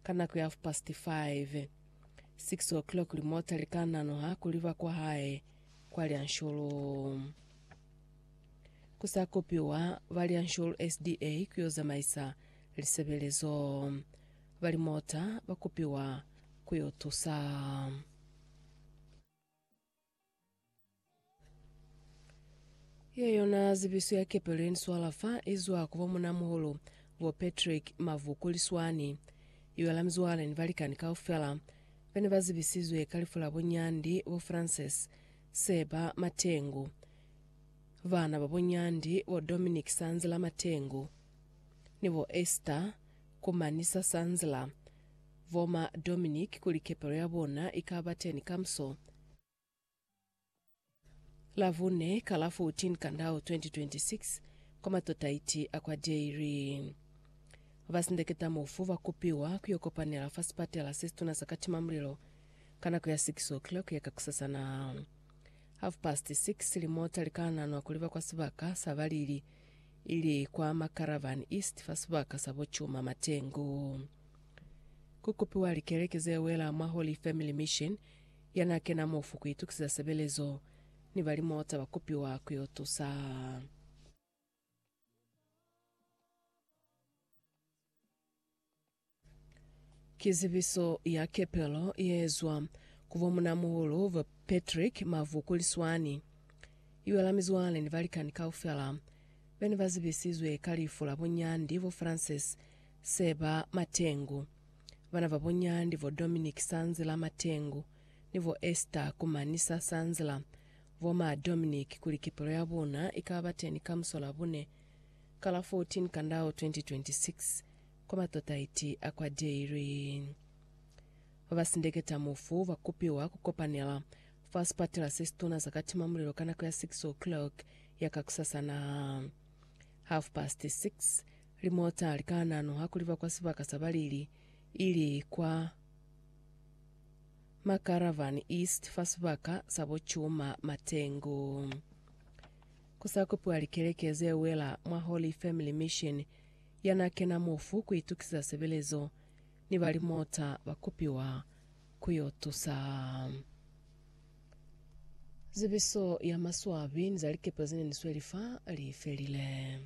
ka nako ya half past five. Six o'clock limota likanano ha ku liba kwa hae kwa Lyansholo. Ku sa kopiwa ba Lyansholo SDA ku yo zamaisa lisebelezo. Ba limota ba kopiwa ku yo tusa. Ye yona zibiso ya kepelo ye ni swala fa i zwa ku bo Mun'a Muhulu, bo Patrick Mavuku Liswani, i wela mizwale ni balikani kaufela ba ne ba zibisizwe ka lifu la bo Nyandi, bo Frances Seba Matengu, bana ba bo Nyandi, bo Dominic Sanzila Matengu ni bo Esther Kumanisa Sanzila, Bo ma Dominic kuli kepelo ya bona i ka ba teni kamuso, la bune ka la 14 Kandau 2026, kwa matotaiti a kwa Dairy. Ba sindeketa mufu ba kupiwa ku yo kopanela fa sipatela se situna sa katima mulilo ka nako ya 6 o'clock ya kakusasana. Half past 6 limota li ka nanwa kuli ba kwa sibaka sa balili ili kwa Macaravan East fa sibaka sa bo Chuma Matengu. Ku kupiwa likeleke ze wela mwa Holy Family Mission ya n'a kena mofu ku itukisiza sebelezo, ni ba limota ba kupiwa ku yo tusa. Ki zibiso ya kepelo ye zwa ku bo munamuhulu ba Patrick Mavu kuli swani. I wela mizwale ni balikani kaufela be ne ba zibisizwe ka lifu la bo Nyandi bo Frances Seba Matengu, bana ba bo Nyandi bo Dominic Sanzila Matengu ni bo Esther Kumanisa Sanzila. Bo ma Dominic kuli kepelo ya bona i ka ba teni ka musolabune ka la 14 Kandao 2026 kwa matata iti a kwa daily. Ba ba sindeketa mufu ba kupiwa ku kopanela fa sipatela se situna sa ka tima mulilo ka nako ya 6 o'clock ya kakusasa na half past 6. Limota li ka ananuha kuli ba kwa sibaka sa balili ili kwa Macaravan East fa sibaka sa bo Chuma Matengu. Ku sa kupiwa likeleke ze wela mwa Holy Family Mission ya n'a kena mofu ku itukisiza sebelezo, ni ba limota ba kupiwa ku y'o tusa. Zibiso ya maswabi ni za likepe ze ne ni sweli fa li felile.